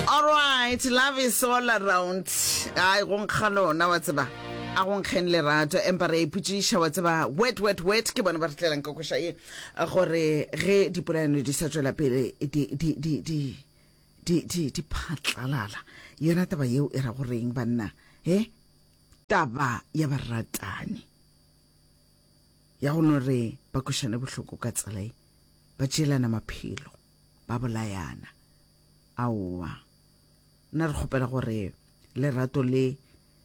Alright, love is all around. Ai, go nkga lona, wa tseba. A go nkgeng lerato, empa re ipotšiša, wa tseba, wet, wet, wet, ke bona ba re tlelang ka koša ye, gore ge dipolaano di sa tšwela pele, di, di, di, di, di, di, di phatlalala. Yona taba yeo e ra go reng, banna? He? Taba ya baratani. Ya go no re ba košane bohloko ka tsela ye, ba tšeelana maphelo. ba bolayana. Aowa. Nna re kgopela gore lerato le,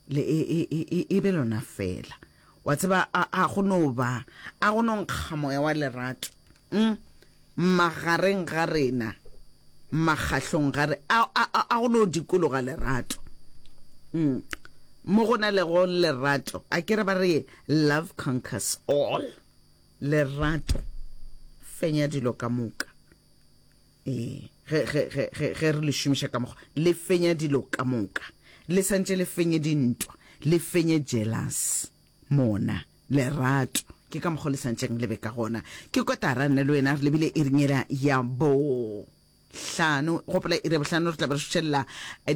le e, e, e, e, e be lona fela. Wa tseba, a, a go no ba, a go no nkga moya wa lerato, mm? magareng ga rena, makgahlong ga re, a, a, a, a go no dikologa lerato. Mm. Mo go na lego lerato, a ke re ba re love conquers all. Lerato, Fenya dilo ka moka. Ee, ge, ge, ge, ge, ge re le šomiša ka mokgwa, le fenya dilo ka moka. Le santše le fenye dintwa, le fenye jealous. Mona, lerato, ke ka mokgwa le santšeng le be ka gona. Ke kotara nna le wena re lebile iring yela ya bo Hlano, gopola iri ya bohlano re tla be re šušelela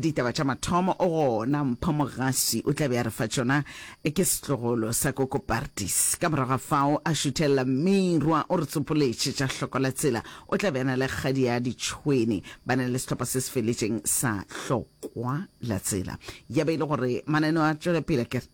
ditaba tša mathomo, gona Mpho Mogasi o tla be a re fa tšona, ke setlogolo sa Koko Partis. Ka morago ga fao a šuthelela Mmirwa o re tsopoletše tša Hloko la Tsela, o tla be a na le kgadi ya Ditšhwene, ba na le sehlopha se se feletšeng sa Hlokwa la Tsela. Ya be e le gore mananeo a tšwela pele, a ke re?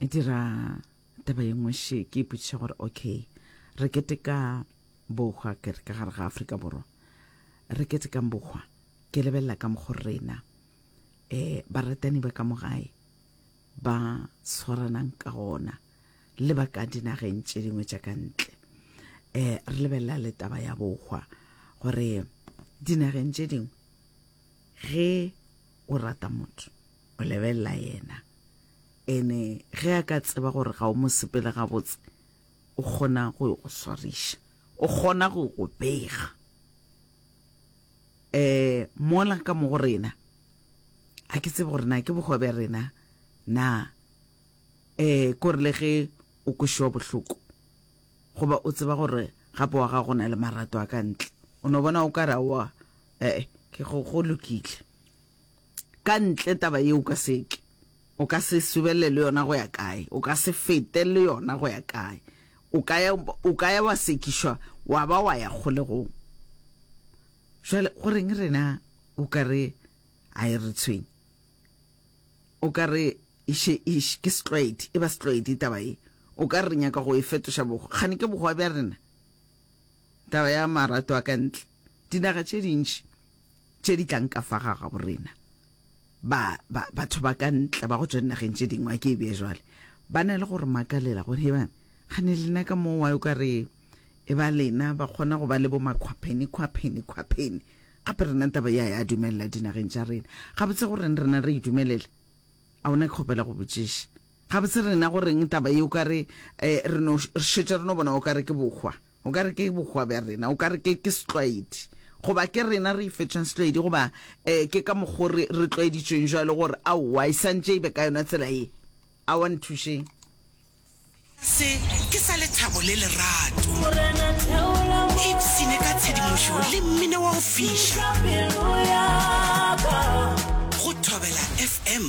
e dira taba ye nngwe še ke ipotšiša gore okay re keteka bohwa ke re ka gare ga afrika borwa re ketekang bohwa ke lebelela ka mokgo rena um baratani ba ka mogae ba tshwaranang ka gona le ba ka dinageng tše dingwe tša ka ntle um re lebelela le taba ya bohwa gore dinageng tše dingwe ge o rata motho o lebelela yena ene ge a ka tseba gore ga o mo sepele gabotse o kgona go go swariša o kgona go go bega eh mola ka mo go rena a ke tsebe gore na ke bogoa bja rena na eh kore le ge o kwešwa bohloko goba o tseba gore gape wa ga go na le marato a ka ntle o no bona o ka ra wa eh ke go go lokile Ka ntle taba ye o ka se e tle, o ka se subelele le yona go ya kae, o ka se fete le yona go ya kae. O ka ya, o ka ya wa sekišwa wa ba wa ya kgolegong. Jwale go reng rena o ka re a e re tshwenye? O ka re iše, iše ke setlwaedi, e ba setlwaedi taba ye. O ka re re nyaka go e fetoša bogo, kgane ke bogoa bja rena taba ya marato a ka ntle. Dinaga tše dintši tše di tlang ka fa ga gabo rena, ba, ba, batho ba ka ntle ba go tšwa dinageng tše dingwe, a ke e bee jwale, ba na le go re makalela gore, he bana, gane lena ka moo wa yo ka re e ba lena ba kgona go ba le bo makhwapheni, khwapheni, khwapheni, gape rena taba ya ya dumelela dinageng tša rena. Gabotse goreng rena re e dumelela? A o na ke kgopela go botšiša? Gabotse rena goreng taba ye o ka re, eh, re no, re šetše re no bona o ka re ke bohwa? O ka re ke bohwa bja rena, o ka re ke, ke setlwaedi, goba ke rena re ifetšeng setlwaedi, goba um ke ka mokgo re, re tlwaeditšweng jwalo gore aowa e santše e be ka yona tsela ye. Aowa nthušeng. Se ke sa lethabo le lerato. Ipshine ka tshedimošo le mmino wa go fiša. Go Thobela FM,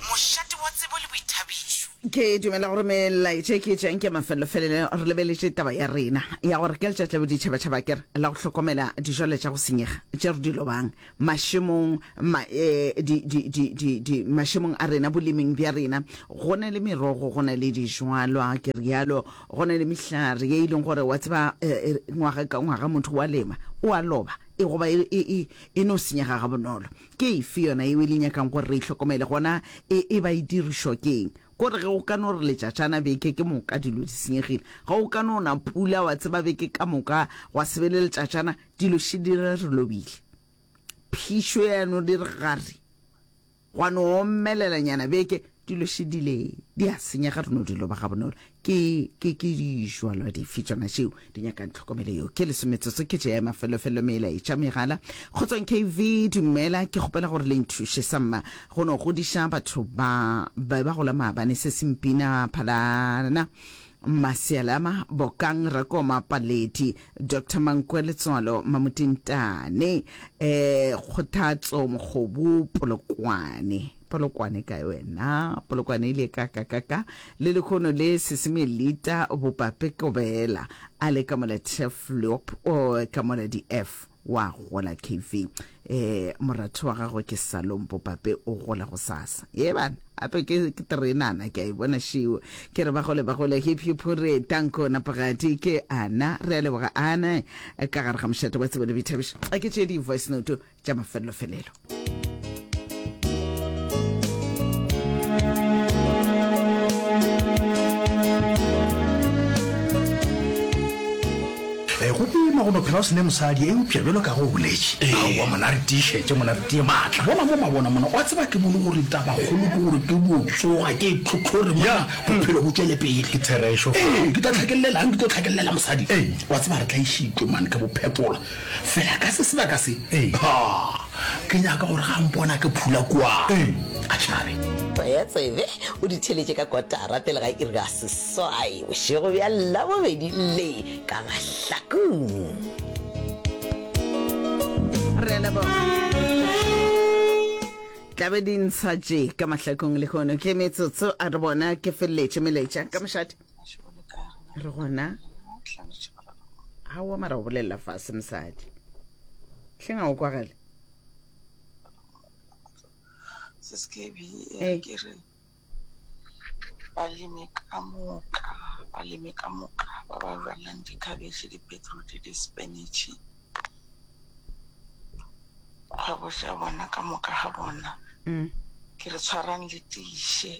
mošate wa tsebo le boithabišo. Ke dumela gore melaetša e ke e tšeang ke ya mafelelo-felelo. Re lebeletše taba ya rena ya gore ka letšatši la boditšhaba-tšhaba ke re la go hlokomela dijwalo tša go senyega tše re di lobang mašemong, ma, e, di, di, di, di, di, mašemong a rena, boleming bja rena. Go na le merogo, go na le dijwalwa, ke realo, go na le mehlare ye e leng gore wa tseba e, e, ngwaga ka ngwaga motho wa lema, o a loba, e goba e, e, e, e no senyega gabonolo. Ke efe yona yeo e le nyakang gore re e hlokomele, gona e e ba e dirišwa keng? Kore ge go ka no re letšatšana beke ke moka dilo di senyegile. Ge go ka no na pula, wa tseba, beke ka moka gwa se be le letšatšana, dilo še di re re lobile. Phišo ya no dire gare, gwa no omelelanyana beke. Dilo še di le di a senyega re no di loba gabonolo. Ke, ke, ke dijwalwa dife tšona tšeo di nyakang tlhokomelo yeo? Ke leso metsotso ke tše ya mafelofelo melaetša megala. Kgotsong KV, dumela, ke kgopela gore le nthuše sa mma go no godiša batho ba ba ba gola maabane se se mpina phalana Masialama, Bokang, Rakoma, Paledi, Doctor Mankwe, Letswalo, Mamotintane, eh, Kgothatso, Mokgobu, Polokwane. Polokwane kae wena? Polokwane e ile ka ka ka ka le lekhono le seseme lita bopape kobela a le ka mola tef lop o ka mola di f wa gola KV eh moratho wa gago ke salong bopape o gola go sasa ye bana ape ke ke terenana ke a e bona shiwo ke re ba gole ba gole hip hip hore tanko napagadi ke ana re a leboga ana ka gare ga mošate wa tsebo le boithabišo a ke tše di voice note tša mafelelofelelo Eh, go boima go no phela o sene mosadi eupša bjalo ka go boletše aowa mona re tiišetse mona re tie maatla bona mo mabona mona wa tseba ke bone gore tabakgolo ke gore ke botsoga ke tlhotlhore mona bophelo bo tšwele pele ke therešo fa. Ee, ke tla tlhakelelelang ke tlo tlhakelela mosadi wa tseba re tla išitlo mane ka bophekola Fela ka se sebaka se, ha, ke nyaka gore ga mpona ke phula kua, a tšhabe. Tsaya tsebe, o di theletše ka kotara pele ga iri ya seswai bošego bja Labobedi le ka mahlakong. Re a leboga. tla be di ntsha tše ka mahlakong lehono ke metsotso a re bona ke feleletše melaetša ka mošate re gona gaowa mara go bolelela fase mosadi hleng a o kwagale eh. balemi ka moka balemi ka moka ba ba jalang dikhabetšhe dipetroti dispenitšhe kgwebo ja bona ka moka ga bona mm. ke re tshwarang le tiše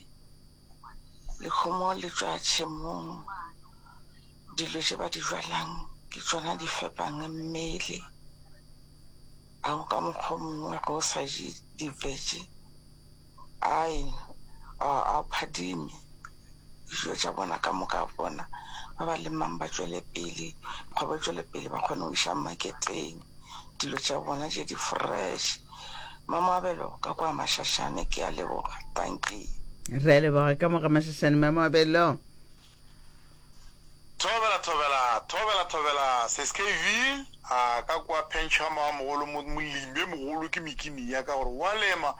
Dikgomo le tšwa tšhemong, dilo tše ba di jwalang ke tšona di fepang mmele. A go ka mokgwa o mongwe ge o sa je di-vege a o phadime. Dijo tša bona ka moka bona ba ba lemang ba tšwele pele, kgwebo e tšwele pele ba kgone go iša maketeng. dilo tša bona tše di fresh. Mma Moabelo ka kwa Mašašane ke a leboga. Dankie. Re a leboga ka mo ga Mašašane Mma Moabelo. Thobela thobela thobela thobela Skv a ka kwa Pencha Mma mogolo molimi e mogolo ke mikini ya ka gore wa lema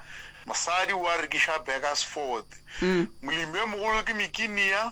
mosadi wa rekiša Burgersford molimi e mogolo ke mikini ya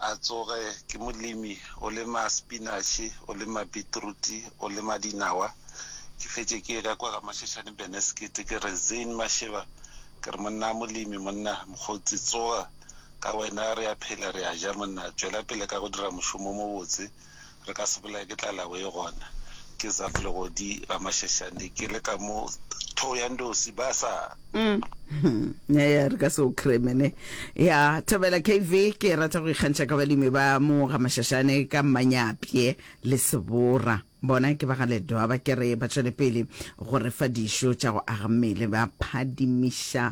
A tsoge, ke molemi, o lema sepinatšhe, o lema beetruti, o lema dinawa. Ke fetše ke ye ka kwa ga Mashashane Benesket, ke re, Zein Masheba, ke re, monna a molemi, monna, mokgotsi, tsoga, ka wena re ya phela, re ya ja, monna, tšwela pele ka go dira mošomo o mobotse. re ka se bolae ke tlalawe ye gona ke zaf legodi ba mashashane ke le ka mo tho ya ndosi ba sa mm. ya re ka se o kremene ya thabela kv ke e rata go ikgantšha ka balemi ba mo ga mashashane ka mmanyapye le sebora bona ke ba ga ledoa ba kere ba tšwele pele go re fa dišo tša go aga mmele ba phadimiša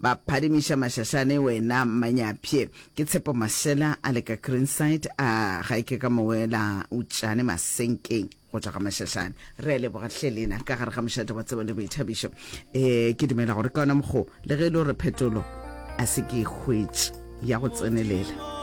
ba phadimiša mashashane wena mmanyapye Ke Tshepo Mashela a le ka Greenside a ga e ke ka mowela Utšane Masenkeng go tla ga Mashashane. Re a leboga hle lena ka gare ga mošate wa tsebo le boithabišo. E, ke dumela gore ka ona mokgo le ge e le gore phetolo a se ke e hwetše ya go tsenelela.